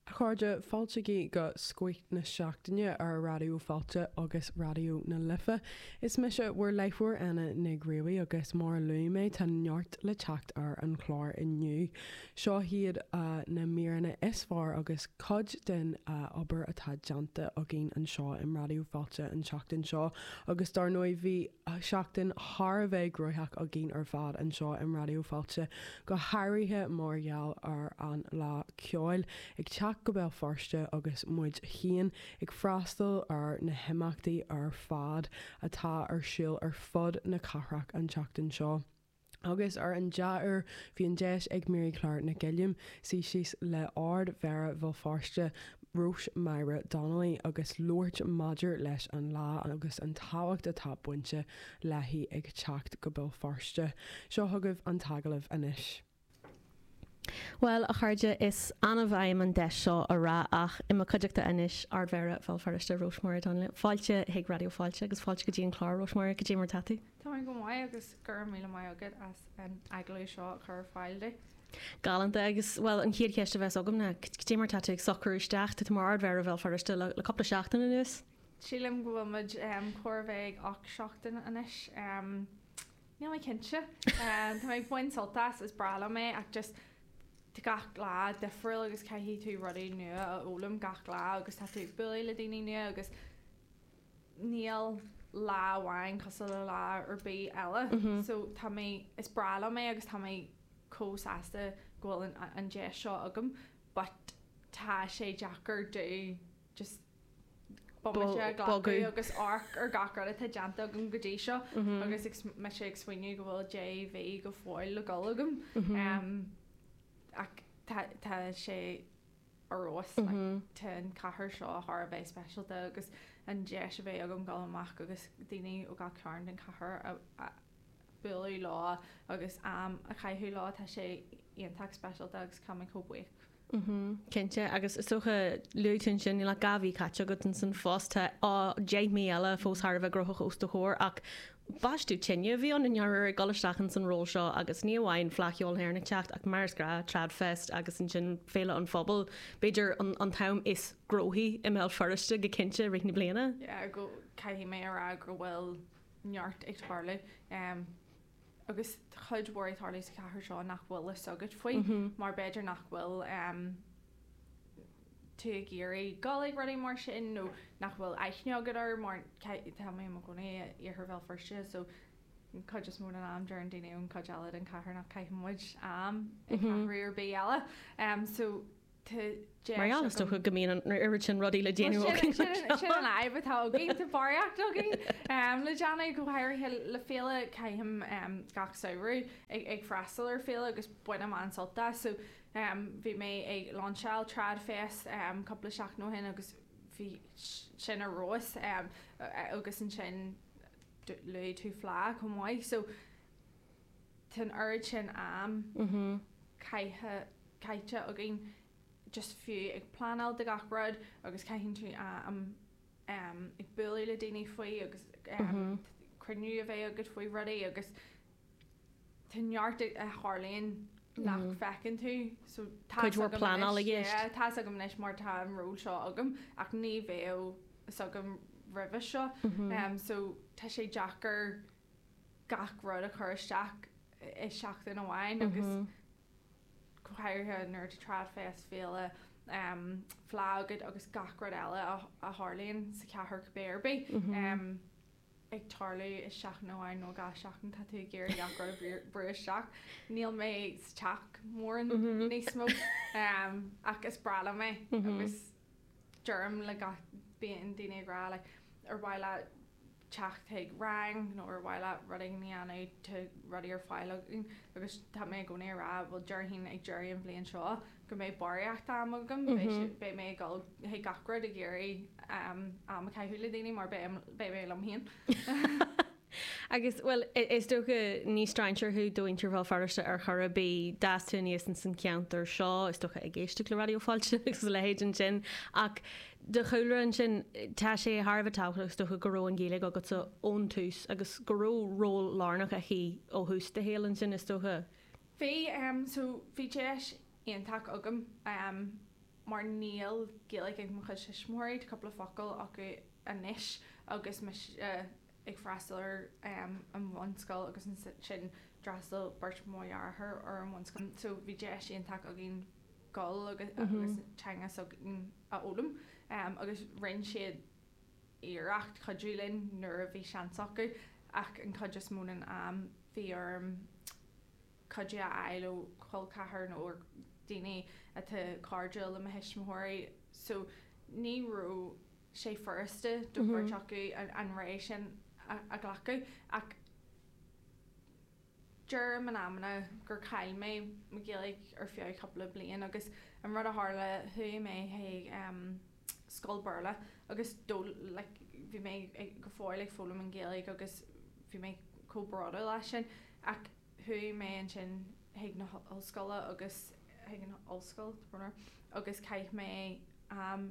A chairde, fáiltigí go Scoith na Seachtaine ar Raidió Fáilte agus Raidió na Life. Is mise bhur láithreoir Éanna Mac Ruaidhrí agus mar a luaigh mé tá neart le teacht ar an chlár inniu. Seo iad na míreanna is fearr agus cuid den obair atá déanta againn anseo i Raidió Fáilte an tseachtain seo agus dar ndóigh bhí seachtain thar a bheith gnóthach againn ar fad anseo i Raidió Fáilte, go háirithe mar gheall ar an Fhleá Ceoil ag teacht go Béal Feirste agus muid féin ag freastal ar na himeachtaí ar fad atá ar siúl ar fud na cathrach an tseachtain seo. Agus ar an dea-uair, bhí an deis ag Mary Clare Nic Uilliam suí síos le Ardmhéara Bhéal Feirste, Róis-Máire Donnelly agus labhairt maidir leis an Fhleá agus an tábhacht atá bainte léi ag teacht go Béal Feirste. Seo chugaibh an t-agallamh anois. Bhuel, a chairde, is annamh a fhaighim an deis seo a rá ach, i mo cuideachta anois, Ardmhéara Bhéal Feirste, Róis-Máire Donnelly. Fáilte chuig Raidió Fáilte agus fáilte go dtí an clár, Róis-Máire, cad é mar atá tú? Táim go maith agus go raibh míle maith agat as an agallamh seo a chur ar fáil duit. Galánta agus, bhuel, an chéad cheist a bheas agam ná, cad é mar atá tú ag socrú isteach, tú mar Ardmhéara Bhéal Feirste le cúpla seachtain anuas? Sílim go bhfuil muid chóir a bheith ag ocht seachtain anois. Níl mé cinnte. Tá mé ag baint sult as, is breá liom é ach just tá gach lá difriúil agus caithfidh tú rudaí nua a fhoghlaim gach lá agus tá tú ag bualadh le daoine nua agus níl lá amháin cosúil le lá ar bith eile. So tá mé, is breá liom é agus tá mé chomh sásta go bhfuil an deis seo agam but tá sé deacair dó. just bomaite a ghlacadh agus amharc ar gach rud atá déanta agam go dtí seo agus bím ag smaoineamh go bhfuil deich mí go fóill le dhul agam ach tá tá sé ar fheabhas like tá an chathair seo thar a bheith speisialta agus an deis a bheith agam dul amach agus daoine ó gach cearn den chathair a a bualadh leo agus am a chaitheamh leo tá sé iontach speisialta agus táim chomh buíoch Mhmm, cinnte, agus is dócha luaigh tú ansin níl ach dhá mhí caite agat sa phost, tá á deich mí eile fós thar a bheith gnóthach os do chomhair, ach baisteadh tine a bhí ann i ndáiríre ag dul isteach ins an ról seo agus ní amháin Fleadh Cheoil na hÉireann ag teacht ach mar is gnáth, Tradfest agus ansin Féile an Phobail, b'fhéidir an t-am is gnóthaí i mBéal Feirste go cinnte i rith na bliana. Caithfidh mé a rá go bhfuil neart ag tarlú. agus tá cuid mhór ag tarlú sa chathair seo nach bhfuil a fhios agat faoi mar b'fhéidir nach bhfuil tú ag iarraidh dul chuig rudaí mar sin nó nach bhfuil aithne agat air mar tá mé i mo chónaí i iarthar Bhéal Feirste so an cuid is mó den am deireann daoine ón cuid eile den chathair nach caitheann muid am i gceathrú ar bith eile so Mar, is dócha, go mbíonn an oiread sin rudaí le déanamh againn. Sin an fhadhb atá againn, tá barraíocht againn le déanamh, go háirithe le féile caithim gach samhradh ag freastal ar féile agus bainim an-sult as. So bhí mé ag lainseáil Tradfest cúpla seachtain ó shin agus bhí sin ar fheabhas agus ansin luaigh tú fleá chomh maith so Tá'n oiread sin am caithe, caithte againn just fiú ag pleanáil do gach rud agus caitheann tú am ehm ag bualadh le daoine faoi agus ehm cruinniú a bheith agat faoi rudaí agus tá neart a tharlaíonn nach bhfeiceann tú so tá's agam anois, yeah, tá's agam anois mar tá an ról seo agam ach ní bheadh 's agam roimhe seo ehm so tá sé deacair. gach rud a chur isteach i seachtain amháin agus go háirithe nuair atá Trad Fest, féile, fleá agat agus gach rud eile a tharlaíonn sa chathair cibé ar bith ag tarlú i seachtain amháin nó dhá sheachtain tá tú ag iarraidh gach rud a bhrú isteach. Níl mé sa teach mórán níos mó ach is breá liom é agus. deirim le gach, bíonn daoine ag rá like ar mhaith leat teacht chuig rang nó ar mhaith leat rud éigin a dhéanamh tá rudaí ar fáil againn agus tá mé i gcónaí ag rá bhuel déarfainn ag deireadh an bhliain seo go mbeidh barraíocht am agam beidh sé beidh mé ag dul chuig gach rud ag iarraidh am a caitheamh le daoine mar beidh beidh mé liom féin Agus, bhuel, is dócha, ní strainséir thú do mhuintir Bhéal Feirste ar chor ar bith. D'fhás tú aníos ins an cheantar seo, is dócha, ag éisteacht le Raidió Fáilte agus a leithéid ansin. Ach do chúlra ansin, tá sé thar a bheith tábhachtach, is dócha, go raibh an Ghaeilge agatsa ón tús agus go raibh ról lárnach aici ó thús do shaoil ansin, is dócha. Bhí, so, bhí deis iontach agam mar níl Gaeilge ag mo chuid tuismitheoirí, tá cúpla focal acu anois agus mise ag freastal ar an bhunscoil agus ansin d'fhreastail beirt mo dhearthár ar an bhunscoil so bhí deis iontach againn dul agus teanga s'againn a fhoghlaim agus rinn siad iarracht cuidiú linn nuair a bhí seans acu ach an chuid is mó den am bhí orm cuidiú a fháil ó chol ceathrair nó ó dhaoine atá cairdiúil le mo thuismitheoirí so ní raibh sé furasta do bheirt acu an rogha sin a ghlacadh ach deirim in amanna gur chaill mé mo Ghaeilge ar feadh cúpla bliain agus an rud a tharla chuaigh mé chuig scoil Béarla agus bhí mé go fóill ag foghlaim an Ghaeilge agus bhí mé chomh bródúil as sin ach chuaigh mé ansin chuig na ollscoile agus chuig an ollscoil agus chaith mé am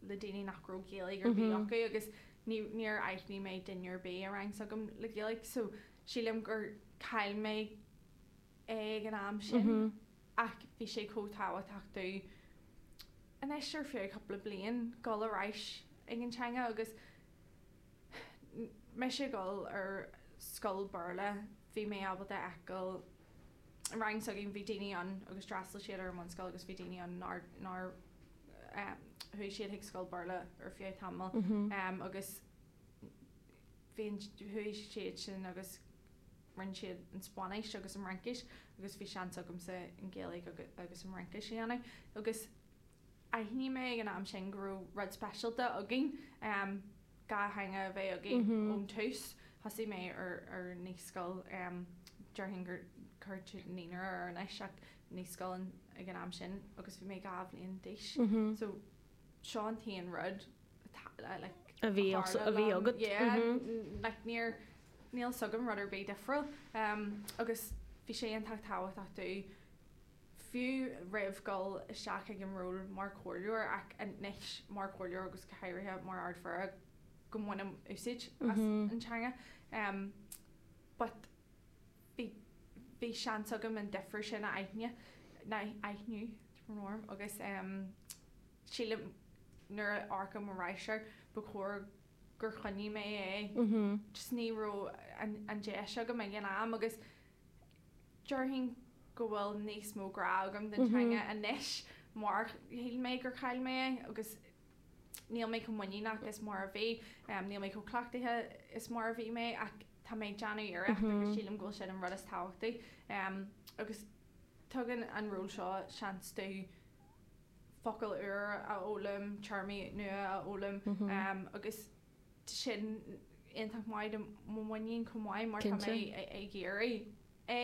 le daoine nach raibh Gaeilge ar bith acu agus ní, níor aithnigh mé duine ar bith i rang s'agam le Gaeilge so sílim gur chaill mé é ag an am sin ach bhí sé chomh tábhachtach domh anois ar feadh cúpla bliain dhul ar ais ag an teanga agus mise ag dhul ar scoil Béarla bhí mé ábalta a fheiceáil i rang s'agam bhí daoine ann agus d'fhreastail siad ar an mbunscoil agus bhí daoine ann nár, nár. chuaigh siad chuig scoil Béarla ar feadh tamaill agus bhí an, chuaigh siad sin agus rinne siad an Spáinnis agus an Fhraincis agus bhí seans agamsa an Ghaeilge agus an Fhraincis a dhéanamh agus d'aithnigh mé ag an am sin go raibh rud speisialta againn. dhá theanga a bheith againn ón tús. Thosaigh mé ar ar naíscoil, déarfainn gur naíonra é anois ach naíscoil ag an am sin agus bhí mé dhá bhliain d'aois. So seo an t-aon rud atá like a bhí a bhí agat yeah like níor níl 's agam rud ar bith difriúil. Agus bhí sé iontach tábhachtach domh fiú roimh dhul isteach ag an ról mar chomhairleoir ach anois mar chomhairleoir agus go háirithe mar Ard Mhéara go mbainim úsáid as an teanga but bhí bhí seans agam an difir sin a aithn a aithniú orm agus em sílim nuair a amharcaim ar ais air ba chóir gur choinnigh mé é just ní raibh an an deis agam ag an am agus Déarfainn go bhfuil níos mó grá agam don teanga anois mar shíl mé gur chaill mé é agus níl mé chomh muiníneach is mar a bhí. Níl mé chomh cleachtaithe is mar a bhí mé ach tá mé ag déanamh iarracht agus sílim go bhfuil sin an rud is tábhachtaí agus tugann an ról seo seans domh focail úr a fhoghlaim, téarmaí nua a fhoghlaim agus. sin iontach maith do mo mhuinín chomh maith mar tá mé ag iarraidh é.